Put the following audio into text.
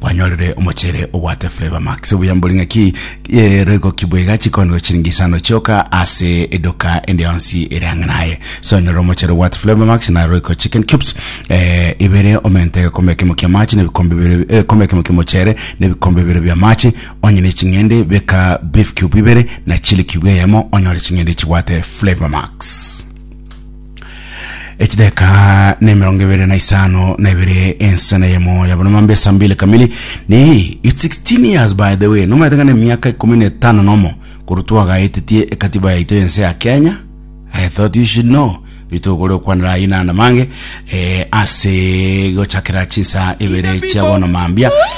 kwanyorire omochere obwate Flavor Max obuya mbori ng'aki eh, roigo kibwega chikondo chiringi isano chioka ase edoka ende yonsi ere ang'e naye sonyorire omochere obwate Flavor Max na roico chicken cubes eh, ibere omente egekombe ekemo kia machi na ebikombe bibere eh, egekombe ekemo kia omochere na ebikombe bibere bia machi onyene ching'ende beka beef cube ibere na chili cube eyemo onyore ching'ende chibwate Flavor Max Echideka na emerongo ebere na isano na ebere ensana yemo ya bono mambe saa mbili kamili ni it's 16 years by the way nomaete ng'a nemiaka ikumi na etano nomo korwa twagaetetie ekatiba yaito yense ya kenya i thought you should know bitogore okwanera ayi nanda mange eh, ase gochakera chinsa ibere chia bono mambia